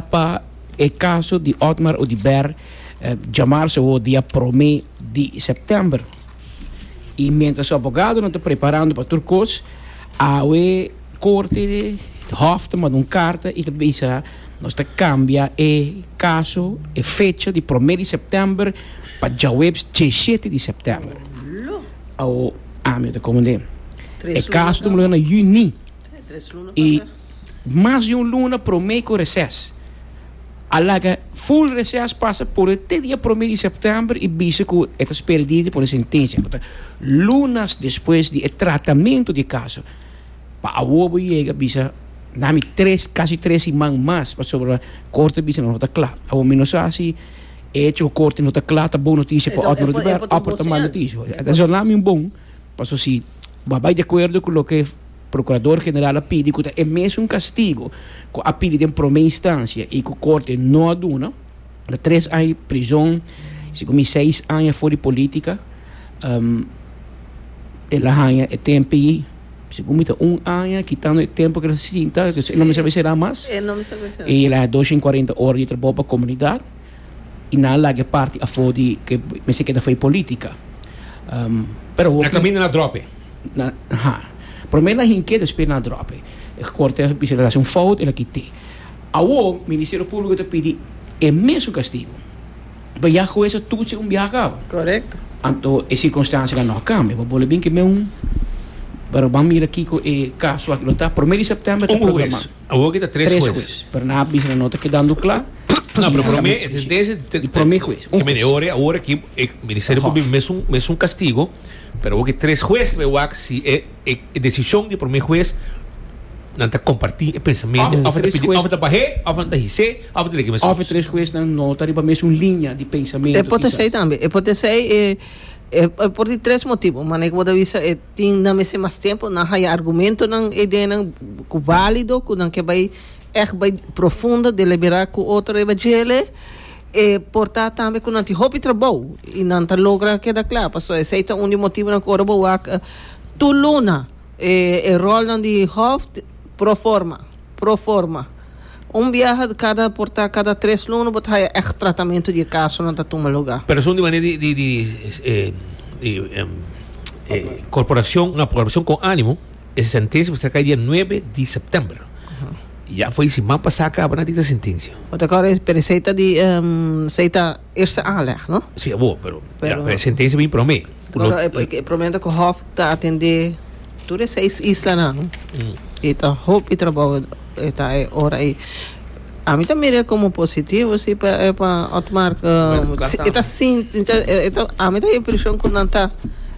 Pa e kaso di Otmar Oduber djamar su wou dia prome di sèptèmber i miéntras su abogadonan ta preparando pa tur kos, awe korte, hòf, ta manda un karta i ta bisa, Nos ta kambia e kaso, e fecha di prome di sèptèmber pa djaweps djeshete di sèptèmber. Awo ami ta komand'é e kaso ta muna na yuní i. mas di un luna promé ku reses. A laga full reses pasa por e te dia promé di sèptèmber i bisa ku e ta spera di pone sentensia ku ta lunas despues di e tratamentu di e kaso. Pa awor bo yega bisa nan mi tres kasi tres siman mas pasobra Korte a bisa nan no ta kla. Awor mi no sa si e hecho ku Korte no ta kla ta bon notisia pa Otmar Oduber òf ta mal notisia. Esei nan mi un bon paso si bo a bai di akuerdo ku loke. Procurador General a pidi cu ta e mesun castigo cu a pidi den prome instancia y cu Corte no a duna, ta tres aña di prizon, segun mi seis aña for di politica. Um, el a haña e tempi, segun mi ta un aña, kitando e tempo cu el a sinta, cu el no mester a será mas, y el a haña dos shen cuarenta ora di trabou pa comunidad. y nan a laga e parti afo di ke mester keda afo e politica. Pero hopi. Na caminda na drop e. Na, ha. Promer na hinke despues na drop e. E corte a bisa haci un fout el a kite. Awo Ministerio Publico ta pidi e mesun castigo. But ya hues a toetsen un biaha cabo. Correcto. Anto e circunstancianan no a cambia. Bo bole bin ke men un, pero ban mira kico e caso aki lo ta. Promer di september ta programado. Un hues. Awor ki ta tres hues. Tres hues. Berna a bisa na no ta kedando kla. No, pero prome, desde di prome hues, un hues. Ore, ora ki e ministerio por bin mesun mesun castigo, pero awor ki tres hues ta be wak si e e decision di prome hues nan ta comparti e pensamento of ta pidi of ta bahe of nan ta hise of ta leke mesun. Of e tres huesnan no ta riba mesun linea di pensamento kisa. E por ta esey tambe. E por ta esey e por di tres motibo. Manera ku bo ta bisa e. Tin nan mester mas tempu. Nan haya argumentonan, e ideanan cu valido, cu nan ke bay echt bay profundo, deliberá cu otro riba djel'e. E por ta tambe cu nan tin hopi trabou y nan ta logra keda cla. Pasobra esey ta un di motibonan cu ora bo wak tur luna e rolnan di hoft proforma. Proforma. Un biaha kada por ta kada tres luna bo ta haya echt tratamentu di e kasonan ta tuma luga. Person di manera di di di corporacion na programacion con animo e sentencia mester cay dia nuebe di september ya fo'i siman pasa a caba nan dicta sentencia. But aco e pero esey ta di esey ta eerste aanleg no? Si abo pero ya pero e sentencia bini prome. Lo Goro e, e promete ku hof ta atendé tur e seis islanan. I ta hopi trabou e ta e ora i a mi ta mir'é komo positivo si pa e pa Otmar ku Bueno, klas si- e ta tambe. sin e ta e ta a mi ta impreshon ku nan ta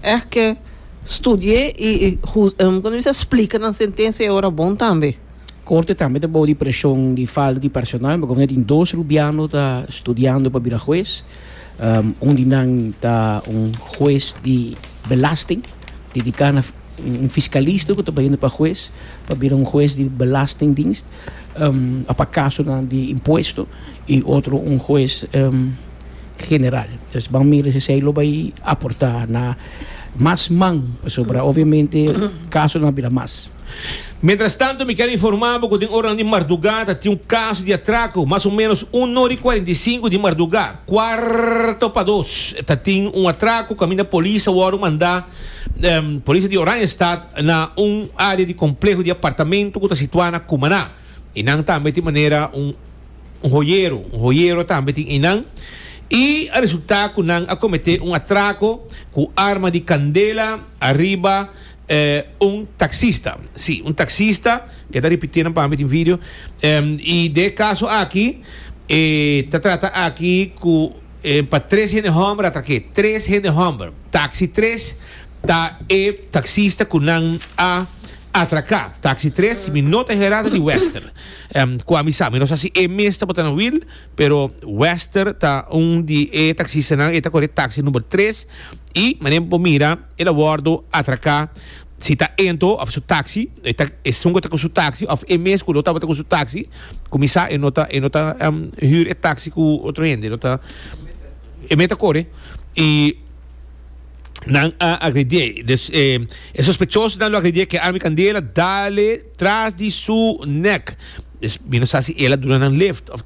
ègt ke studié i i hus em kònde bisa splika nan sentensia e ora bon tambe. Korte tambe ta bou di preshon di falta di personal, pasobra tin dos rubiano ta studiando pa bira hues. Un di nan ta un hues di belasting, dediká na un fiskalista ku ta bahiendo pa hues pa bira un hues di belastingdienst òf pa kasonan di impuesto i otro un hues general. Entonces ban mira si esei lo bai aportá na mas man pasobra obviamente kasonan a bira mas. Mientras tanto mi kel informa bo cu den oranan di marduga ta tin un caso di atraco, mas o menos uno ori cuarenta y cinco di marduga, cuarto pa dos, ta tin un atraco caminda polis a worde manda Polis di Oranjestad na un area di compleho di apartamento cu ta situa na Cumaná y nan tambe tin manera un hoyero, un hoyero tambe tin einan y a resulta cu nan a comete un atraco cu arma di candela ariba E un taxista, si, un taxista, ke ta ripití nan pami den video, i den e kaso aki e ta trata aki ku e pa tres hende hòmber a trak'é, tres hende hòmber, taxi tres ta e taxista ku nan a atraká, taxi tres si mi no ta herá ta di Wester, kua mi sa, mi no sa si e mes tabata na Wil, pero Wester ta un di e taxistanan, e ta kore taxi number tres i manera bo mira. El a wordo atraca si ta ento of su taxi, e ta esun cu ta cu su taxi of e mes cu no tabata cu su taxi, cuminsa e no ta e no ta huur e taxi cu otro hende, e no ta e mes ta core y nan a agredié dus e e sospechosonan lo agredié cu e arma di candela dale tras di su nek, dus bira sa si el a duna nan lift of ta.